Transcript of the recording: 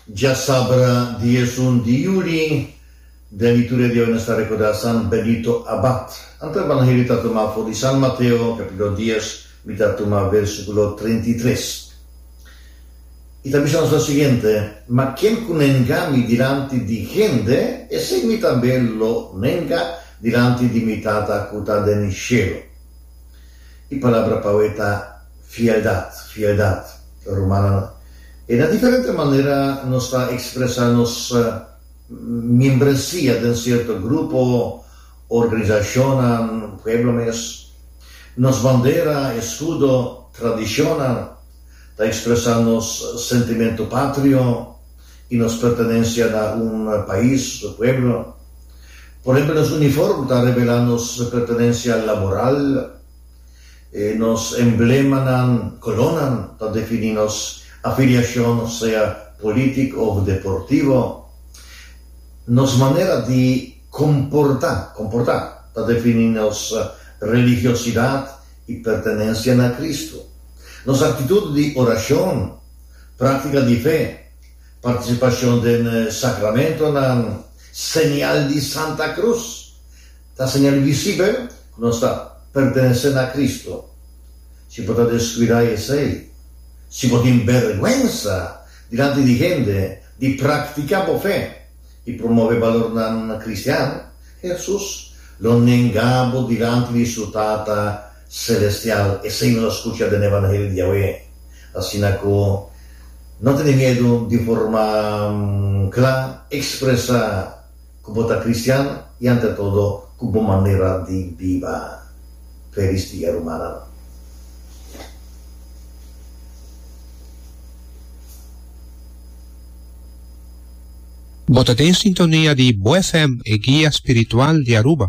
Dja sabra di esun di Yuri, den di tur e dia nos ta rekordá San Benito Abad. Anto Evangelio ta tumá for di San Mateo, kapítulo dies, mi ta tumá versíkulo treinta i tres. I ta bisa nos lo siguiente, Ma ken ku nenga mi dilanti di hende, esei mi tambe lo nenga dilanti di mi Tata ku ta den shelu. I palabra pa awé ta fieldat, fieldat, rumannan. E na diferente manera nos ta ekspresá nos miembresia den sierto grupo, organisashonnan, pueblo mes. Nos bandera, eskudo, tradishonnan ta ekspresá nos sentimentu patrio i nos pertenensia na un pais, pueblo. Por ehempel, nos uniform ta revelá nos pertenencia laboral. Nos emblemanan, colornan, ta definí nos afiliacion, sea politic of deportivo. Nos manera di comportá, comportá, ta definí nos religiosidad i pertenencia na Cristo. Nos actitud di oracion, practica di fe, participacion den sacramentonan, Señal di Santa Cruz ta señal visibel cu nos ta pertenece na Cristo. Si bo ta descuida esey, si bo tin bergwensa dilanti di hende di practica bo fe y promove balornan cristian, Jesus lo nenga bo dilanti di su Tata. Celestial, esei nos a scucha den e Evangelio di Yahweh, asina cu no tene miedu di forma cla expresa cu bo ta cristian y ante todo cu bo manera di biba. Felis dia rumannan. Bo ta den sintonia di Bo FM, e guia spiritual di Aruba.